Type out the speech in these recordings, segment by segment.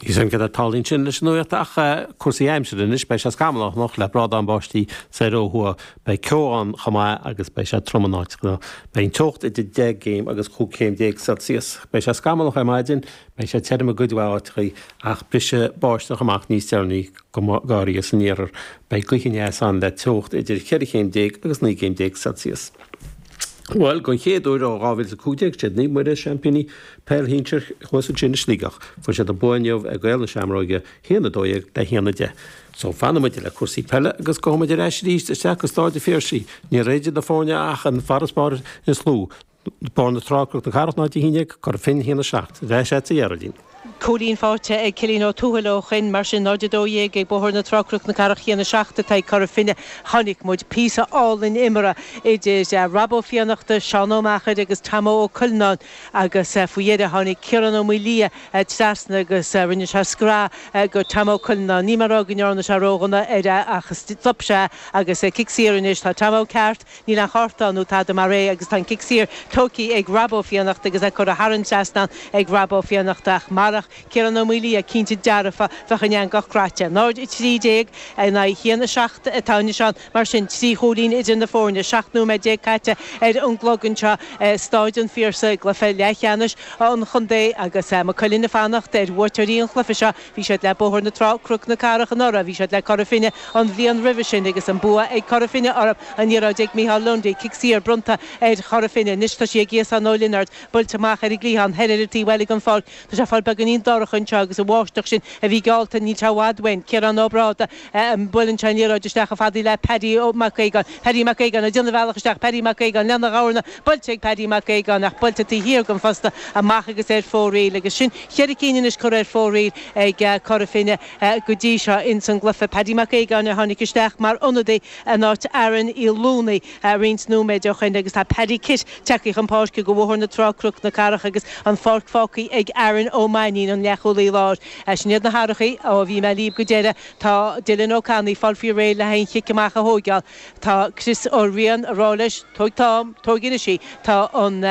Is éard a tarlaíonn sin leis an nuacht ach cúrsaí aimsire anois, beidh sé scamallach anocht le brádán báistí soir ó thuaidh, beidh ceo ann chomh maith agus beidh sé trom in áiteanna. Beidh an teocht idir 10 gcéim agus 15 céim Celsius. Beidh sé scamallach ar maidin, beidh sé tirim i gcuid mhaith áiteachaí ach brisfidh báisteach amach níos deireanaí go háirithe san iarthar. Beidh gaoth aneas ann le teocht idir 14 chéim agus 19 céim Celsius. Bhuel, don chéad uair ó 2015 is iad Naomh Muire, Seaimpíní, Peil shinsir Chluasa Tine i Sligeach. Fuair siad an bua inniu ag Gaeil na Seamróige, 1, 12 le 1, 10. So, fanaimid le cúrsaí peile agus gabhaimid ar ais arís isteach go Stáid an Phiarsaigh. Níl idir na foirne ach an farasbarr is lú, Bóthar na Trá, Cnoc na Cathrach 0 11 Cora Finne 1 7. Bheadh sé sa Dheardaoin. Cúilín faighte ag Cillín Ó Tuathail ó shoin, mar sin 0 12 ag Bóthar na Trá, Cnoc na Cathrach 1 7 atá ag Cora Finne. Chonaic muid píosa álainn imeartha idir Rob Ó Fiannachta, Seán Ó Meachair agus Tomo Culhane. agus faoi dheireadh tháinig Ciarán Ó Maoildhia trasna agus rinne sé scraith go Tomo Culhane. Níl mé a rá go ndearna sé ródhona air ach stop sé agus cic saor anois. Tá Tomo ceart, níl aon chárta ann ná tada mar é agus tá an cic saor tógtha ag Rob Ó Fiannachta agus é curtha thar an trasnán ag Rob Ó Fiannachta ach marach Ciarán Ó Maoildhia cinnte dearfa bheadh an eangach craite. 0:13 in aghaidh a haon a seacht atá anois ann. Mar sin, trí chúilín idir na foirne, 17 nóiméad caite ar an gclog anseo i Stáid an Phiarsaigh i gcluiche leathcheannais an chontae agus Maigh Cuilinn ag fanacht ar bhuaiteoirí an chluife seo. Bhí siad le Bóthar na Trá, Cnoc na Cathrach anuraidh, bhí siad le Cora Finne an bhliain roimhe sin agus an bua ag Cora Finne orthu. An liathróid ag Micheál Lundy, cic saor bronnta ar Chora Finne. Anois tá sí ag Iasán Ó Lionáird, buailte amach ar an gcliathán thoir ar an taobh eile den pháirc. Tá sé ag fáil beagáinín dorcha anseo agus an bháisteach sin a bhí geallta, níl sé i bhfad uainn. Ciarán Ó Brádaigh, buaileann sé an liathróid isteach chomh fada le Paddy Mac Aogáin. Paddy Mac Aogáin ag déanamh a bhealach isteach, Paddy Mac Aogáin lena ghabharanna, buailte ag Paddy Mac Aogáin ach buailte taobh thiar den phosta amach agus ar fóraoil agus sin cheithre cinn anois curtha ar fóraoil ag Cora Finne go dtí seo ins an gcluiche. Paddy Mac Aogáin a tháinig isteach mar ionadaí in áit Aaron Uí Lúnaí. roinnt nóiméid ó shin agus tá Paddy Kitt tagtha chun páirce do Bhóthar na Trá-Cnoc na Cathrach agus an pháirc fágtha ag Aaron Ó Mainnín, an leathchúlaí láir. Sin iad na hathrachaí ó bhí mé libh go deireadh. Tá Dylan Ó Canainn ag fáil faoi réir le haghaidh an chic amach a thóigeáil. Tá Chris Ó Riain a rá leis, Tóig t'am, tóig anois í. Tá an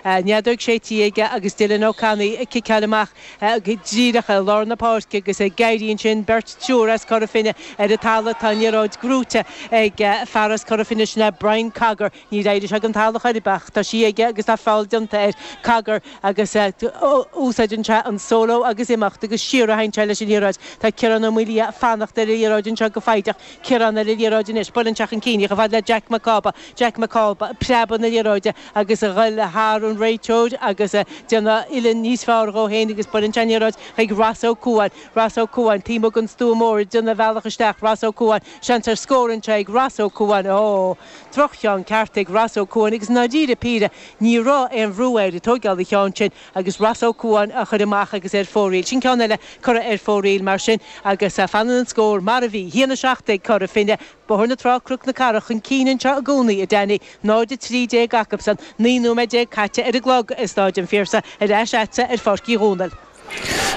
fheadóg séite aige agus Dylan Ó Canainn ag ciceáil amach. go díreach i lár na páirce agus éiríonn ansin beirt triúr as Cora Finne ar an talamh. Tá an liathróid gnóite ag fear as Cora Finne, sin é Brian Cogger. Níor éirigh sé den talamh chor ar bith ach tá sí aige agus tá feall déanta air. Cogger agus úsáideann sé an solo agus imeacht agus siar a théann sé leis an liathróid. Tá Ciarán Ó Maoildhia ag fanacht ar an liathróid anseo go foighdeach. Ciarán ar an liathróid anois. Buaileann sé chun cinn í. Chomh fada le Jack Mac Cába. Jack Mac Cába, preabadh na liathróide. agus a dhul thar an réiteoir agus déanamh uillinn níos fearr dhó féin agus buaileann sé an liathróid chuig Ross Ó Cuain. Ross Ó Cuain, taobh amuigh den stua mór ag déanamh a bhealach isteach, Ross Ó Cuain, seans ar scór anseo ag Ross Ó Cuain, óóó! droch-cheann ceart ag Ross Ó Cuain agus ndáiríre píre ní raibh aon bhrú air ag tóigeáil an cheann sin agus Ross Ó Cuain á chuir amach agus é ar fóraoil. Sin ceann eile curtha ar fóraoil mar sin agus fanann an scór mar a bhí. A haon a seacht ag Cora Finne. Bóthar na Trá-Cnoc na Carach chun cinn anseo i gcónaí, a Danny. 0, 13 acusan, 19 nóiméad caite ar an gclog, i Staid an Phiarsaigh, ar ais leatsa ar Pháirc Uí Dhomhnaill.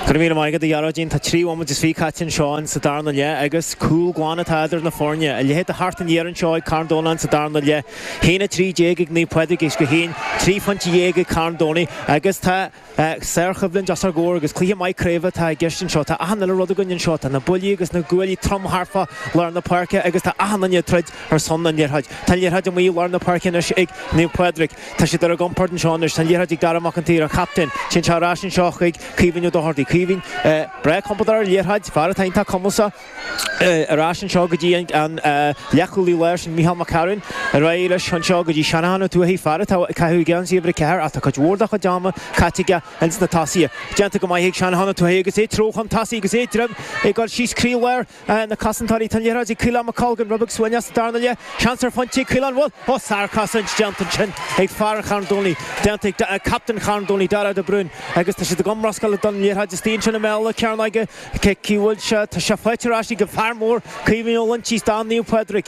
Go raibh míle maith agat, a Ghearóidín. Tá trí nóiméad is fiche caite anseo in sa darna leath agus cúl glan atá idir na foirne. A leithéid de theacht aniar anseo ag Carn Domhnach in sa darna leath. 1, 13 ag Naomh Pádraig Uisce Chaoin, trí phointe dhéag ag Carn Domhnaigh agus tá. Sárchoimhlint os ár gcomhair agus cluiche maith craoibhe atá i gceist anseo. Tá achan uile rud againn anseo. Tá na buillí agus na guaillí trom thar fá lár na páirce agus tá achan duine ag troid ar son an liathróid. Tá an liathróid amuigh i lár na páirce anois ag Naomh Pádraig. Tá siad ar a gcompord anseo anois. Tá an liathróid ag Dara Mac an tSaoir, an captaen. Téann sé ar ais anseo chuig Caoimhín Ó Dochartaigh. Caoimhín, breá compordach ar an liathróid, fear atá iontach cumasach. ar ais anseo go dtí an leathchúlaí láir sin Micheál Mac Cearáin, ar aghaidh leis anseo go dtí Jonathan Ó Tuathaigh, fear atá ag caitheamh geansaí uimhir a ceathair ach tá cuid mhór dá chuid ama caite aige ins na tosaithe. Déanta go maith ag Jonathan Ó Tuathaigh agus é ag treabhadh chun tosaigh agus é ag dréim ag dul síos croí láir na cosantóirí. Tá an liathróid ag Caolán Mac Colgan, rud beag suaimhneach ins an darna leath. Seans ar phointe ag Caolán, bhuel, ó, sárchosaint déanta ansin ag fear an Charn Domhnaigh, déanta ag captaen Charn Domhnaigh, Darragh de Brún, agus tá siad ag iomrascáil ag dul an liathróid istigh ansin i mbéal na cearnóige. Cé ciúil seo. Tá sé faighte ar ais ag an fear mór, Caoimhín Ó Loinsigh, stán Naomh Pádraig.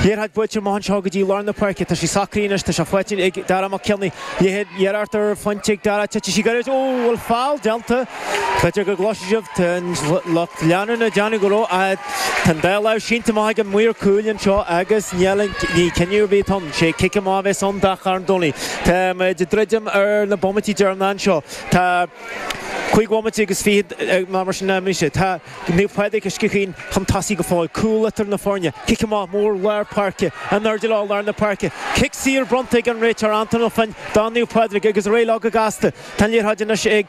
Liathróid buailte amach anseo go dtí lár na páirce. Tá sí socraithe anois. Tá sé faighte ag Dara Mac Cionnaith. Iarracht ar phointe ag Dara. Titfidh sí gairid. Ó, bhfuil foul déanta? B'fhéidir go gcloisfidh sibh an lucht leanúna ag déanamh go raibh. Tá an dá lámh sínte amach ag an maor cúil anseo agus níl aon chinneadh ar bith ann. Sé cic amach a bheas ann do Charn Domhnaigh. Tá muid ag druidim ar na bomaití deireanacha anseo. Tá. Cúig bhomaite agus fiche ná mar sin anois. Tá Naomh Pádraig Uisce Chaoin chun tosaigh go fóill. Cúl idir na foirne. Cic amach mór lár páirce. In airde leo lár na páirce. Cic saor bronnta ag an réiteoir Antoin Ó Floinn do Naomh Pádraig agus ar aghaidh leo go gasta. Tá an liathróid anois ag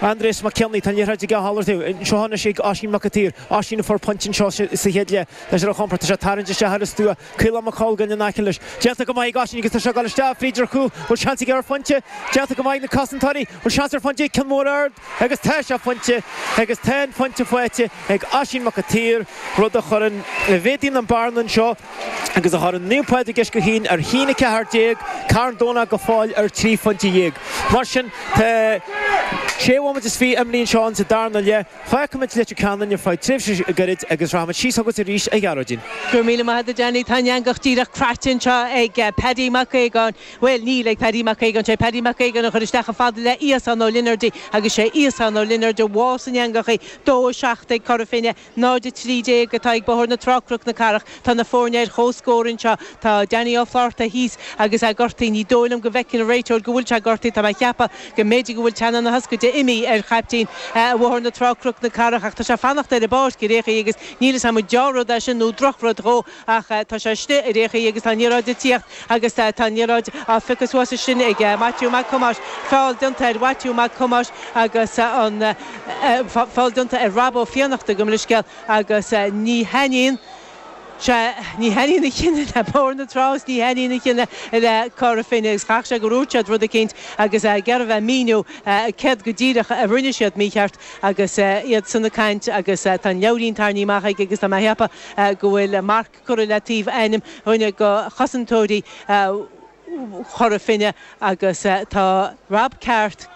Aindrias Mac Cionnaith. Tá an liathróid aige á mhalartú anseo anois ag Oisín Mac a tSaoir. Oisín a fuair pointe anseo sa chéad leath. Tá sé ar a chompord. Tá sé ag tarraingt isteach ar an stua. Caolán Mac Colgan in aice leis. Déanta go maith ag Oisín agus tá sé ag dul isteach fríd ar chúl. Bhuel seans aige ar phointe. Déanta go maith ag na cosantóirí. Bhuel seans ar phointe ceann mór ard agus tá sé ina phointe agus tá an pointe faighte ag Oisín Mac a tSaoir rud a chuireann a mhéadaíonn an bearna anseo agus a chuireann Naomh Pádraig Uisce Chaoin ar 1, 14, Carn Domhnach go fóill ar trí phointe dhéag. Mar sin tá sé bhomaite is fiche imithe anseo in sa darna leath. Fágfaimid Leitir Ceanainn ar feadh tréimhse gairid agus rachaimid síos chugat arís, a Ghearóidín. Go raibh míle maith agat, a Danny. Tá an eangach díreach craite anseo ag Paddy Mac Aogáin. Bhuel, níl ag Paddy Mac Aogáin, sé Paddy Mac Aogáin a chuir isteach chomh fada le Iasán Ó Lionáird í agus sé Iasán Ó Lionáird a bhuail san eangach í. Dó 7 ag Cora Finne, 0 13 atá ag Bóthar na Trá, Cnoc na Cathrach. Tá na foirne ar chomhscór anseo. Tá Danny Ó Flaithearta thíos agus é gortaithe. Ní dóigh liom go bhfeiceann an réiteoir go bhfuil sé gortaithe. Tá mé a cheapadh go mb'fhéidir go bhfuil teannán na hioscaide imithe ar chaiptín Bhóthar na Trá, Cnoc na Cathrach ach tá sé ag fanacht ar an bpáirc i rith an achair agus níl 'fhios a'm an dea-rud é sin nó drochrud dhó ach tá sé istigh i rith an achair agus tá an liathróid ag tíocht agus tá an liathróid á phiocadh suas ansin ag Maitiú Mac Thomáis. Feall déanta ar Mhaitiú Mac Thomáis agus an feall déanta ar Rob Ó Fiannachta gabh mo leithscéal. agus ní thaitníonn sé, ní thaitníonn a chinneadh le Bóthar na Trá is ní thaitníonn a chinneadh le Cora Finne agus caithfidh sé gur úirt siad rud eicínt agus é ag iarraidh a bheith ag míniú céard go díreach a rinne siad mícheart agus iadsan ag caint agus tá an leabhairín tarraingthe amach aige agus tá mé a cheapadh go bhfuil marc curtha le taobh ainm dhuine de chosantóirí Chora Finne agus tá Rob ceart.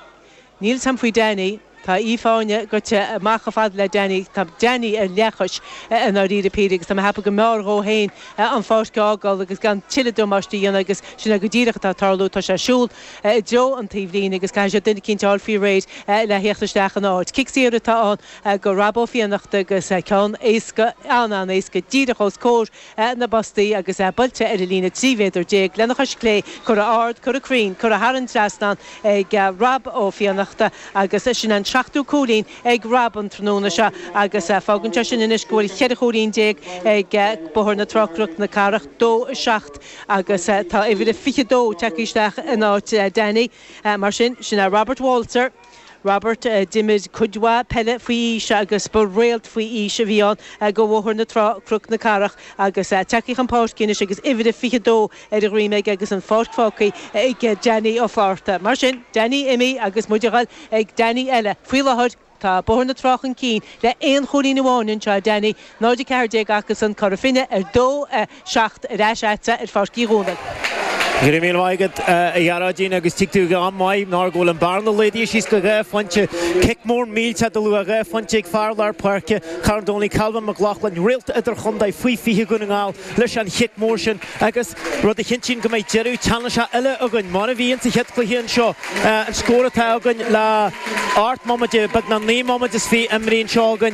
Níl 'fhios a'm faoi Danny. Tá Aoife Áine goite amach chomh fada le Danny. Tá Danny ar leathchois, i ndáiríre píre, agus tá mé ag ceapadh go mb'fhearr dhó féin an pháirc a fhágáil agus gan tuilleadh damáiste a dhéanamh agus sin é go díreach atá ag tarlú. Tá sé ag siúl i dtreo an taobhlíne agus caithfidh sé duine eicínt a fháil faoi réir le theacht isteach ina áit. Cic saor atá ann do Rob Ó Fiannachta agus ceann éasca, an-an-éasca, díreach os comhair na bpostaí agus buailte ar an líne 13 mhéadar lena chois chlé curtha ard, curtha cruinn, curtha thar an trasnán ag Rob Ó Fiannachta agus sin an seachtú cúilín ag Rob an tráthnóna seo agus fágann sé sin anois go bhfuil cheithre chúilín déag ag Bóthar na Trá-Cnoc na Cathrach, dó a seacht agus tá uimhir a fiche dó tagtha isteach in áit Danny. Mar sin, sin é Robert Walzer. Robert a d'imir cuid mhaith peile faoi aois agus ba réalt faoi aois a bhí ann do Bhóthar na Trá, Cnoc na Cathrach agus tagtha chun páirce anois agus uimhir a 22 ar a dhroim aige agus an pháirc fágtha ag Danny Ó Flaithearta. Mar sin, Danny imithe agus muid a dhul ag Danny eile. Faoi láthair, tá Bóthar na Trá chun cinn le aon chúilín amháin anseo, Danny, 0 14 acusan, Cora Finne, ar dó 7 ar ais agatsa ar Pháirc Uí Dhomhnaill. Go raibh míle maith agat, a Ghearóidín, agus tig tú ag am maith mar go bhfuil an bearna laghdaithe síos go dhá phointe. Cic mór millteach de luach dhá phointe ag fear lár páirce Charn Domhnaigh, Calvin McLaughlin, réalta idirchontae faoi 20 Dhún na nGall, leis an chic mór sin agus rud a chinntíonn go mbeidh deireadh teannasach eile againn, mar a bhí insa chéad chluiche anseo. An scór atá againn le 8 mbomaite, beagnach 9 mbomaite is 20 imeartha anseo againn.